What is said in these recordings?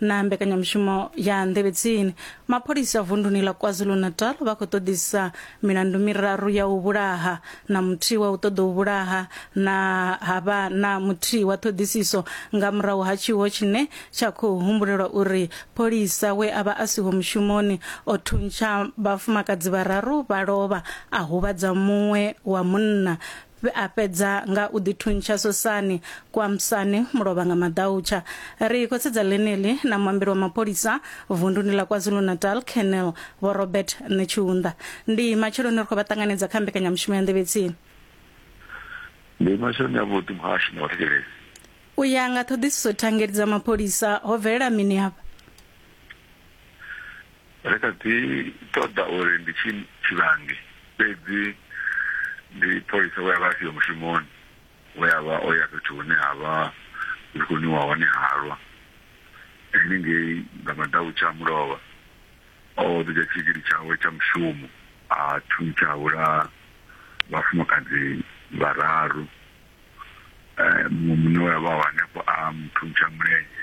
na mbekanyamushumo ya nḓevhedzini mapholisa vunduni ḽa kwazulu-natal vha khou ṱoḓisa milandu miraru ya u vhulaha na muthihi wa u ṱoḓa u vhulaha na havha na muthihi wa ṱhoḓisiso nga murahu ha tshiwo tshine tsha khou humbulelwa uri pholisa we a vha a siho mushumoni o thuntsha vhafumakadzi vhararu vha lovha a huvhadza muṅwe wa munna Vhe a fhedza nga u ḓithuntsha sosani kwa Msane mulovha nga maḓautsha. Ri khou sedza ḽeneḽi na muambeli wa mapholisa vunduni ḽa KwaZulu-Natal, Colonel Vho Robert Netshiunda. Ndi matsheloni ri khou vha ṱanganedza kha mbekanyamushumo ya Nḓevhe Tsini. Ndi matsheloni avhuḓi muhashi na vhathetshelesi. U ya nga ṱhoḓisiso thangeli dza mapholisa ho bvelela mini afha? Ri kha ḓi ṱoḓa uri ndi tshi tshivhangi, fhedzi ndi pholisa we a vha a siho mushumoni we a vha o ya fhethu hune ha vha hu tshi khou nwiwa hone halwa, henengei nga maḓautsha a mulovha. O ḓo dzhia tshigidi tshawe tsha mushumo a thuntsha a vhulaha vhafumakadzi vhararu. Muṅwe munna we a vha o hanefho a mu thuntsha mulenzhe.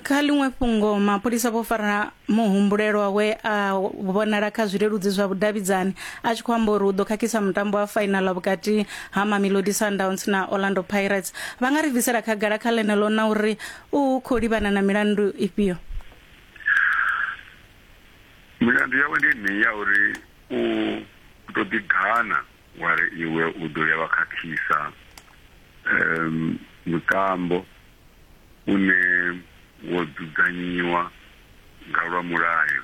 kha ḽiṅwe fhungo mapholisa vho fara muhumbulelwa we a vhonala kha zwileludzi zwa vhudavhidzani a tshi khou amba uri u ḓo khakhisa mutambo wa fainaḽa vhukati ha mamelodi sundowns na orlando pirates vha nga ri bvisela khagala kha ḽeneḽo na uri u khou livhana na milandu ifhio milandu yawe ndi yeneyi ya uri u ḓo ḓigana wa ri iwe u ḓo ya wa khakhisa um mutambo une wo dzudzanyiwa nga lwa mulayo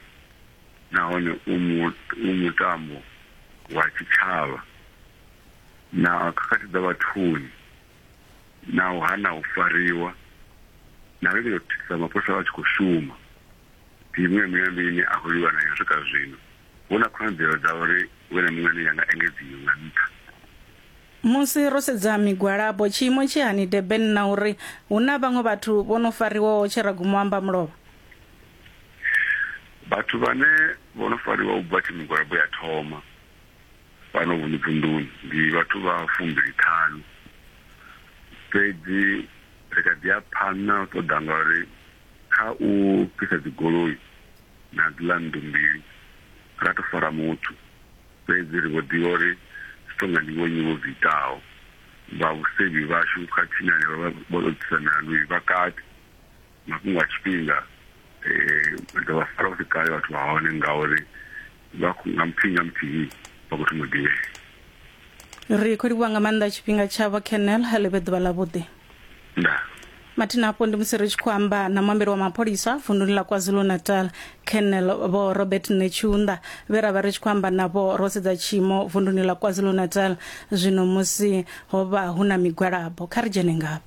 nahone u u mutambo wa tshitshavha na khakhathi dza vhathuni na u hana u fariwa na lingedza u thithisa mapholisa vha tshi khou shuma ndi miṅwe milandu ine a khou lwiwa nayo swika zwino hu na khonadzeo dza uri hu vhe na miṅwe ine ya nga engedziwa nga nṱha. Musi ro sedza migwalabo, tshiimo tshi hani Durban na uri hu na vhaṅwe vhathu vho no fariwaho tshe ra guma u amba mulovha? Vhathu vhane vho no fariwa u bva tshe migwalabo ya thoma fhano vhunu vunḓuni ndi vhathu vha fumbili ṱhanu, fhedzi ri kha ḓi ya phanḓa na u ṱoḓa ngauri kha u fhisa dzigoloi na dziḽa nnḓu mbili ra tou fara muthu. Fhedzi ri vho ḓivha uri zwi tou nga ndi vhonnyi vho zwi itaho. Vhavhusevhi vhashu khathihi na henevha vha vho tou ḓisa milandu vha kati. Mafhungo a tshifhinga, ri ḓo vha fara hu si kale vhathu vha hone ngauri vha khou nga muthihi nga muthihi vha khou thoma u ḓivhea. Ri khou livhuwa nga maanḓa tshifhinga tshavho, Colonel. Ḽi vhe ḓuvha ḽavhuḓi. ndaa mathina afho ndi musi ri tshi khou amba na muambeli wa mapholisa vunduni ḽa kwazulu-natal colonel vho robert netshiunda vhe ra vha ri tshi khou amba navho ro sedza tshiimo vunduni ḽa kwazulu-natal zwino musi ho vha hu na migwalabo kha ri dzhene ngavho